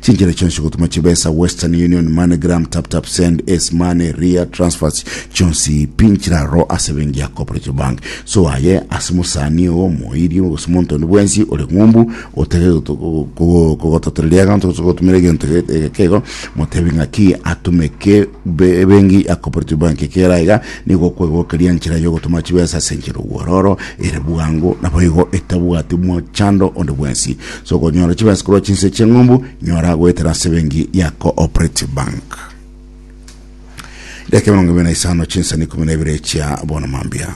Chinchera chionsi gotuma chibesa Western Union, MoneyGram, TapTap Send, Ace Money, Ria, Transfers chionsi pi nchira aro ase ebenki ya Cooperative Bank. So aye ase mosani oo omoiri gose omonto onde bwensi ore ng'umbu otake goto- go- go- gogototereria egento gose gogotumera egento ege- ege kego motebi ng'aki atumeke be- ebenki ya Cooperative Bank ekera iga nigo okwegokeria nchira ya ogotuma chibesa ase enchera obwororo ere bwango naboigo etabwati mochando onde bwensi. Sokonyora chibesa korwa chinse chi'eng'umbu, nyora goetera ase ebenki ya Cooperative Bank. Edakika emerongo ebere na isano chinsa na ikomi na ibere chia bono mambia.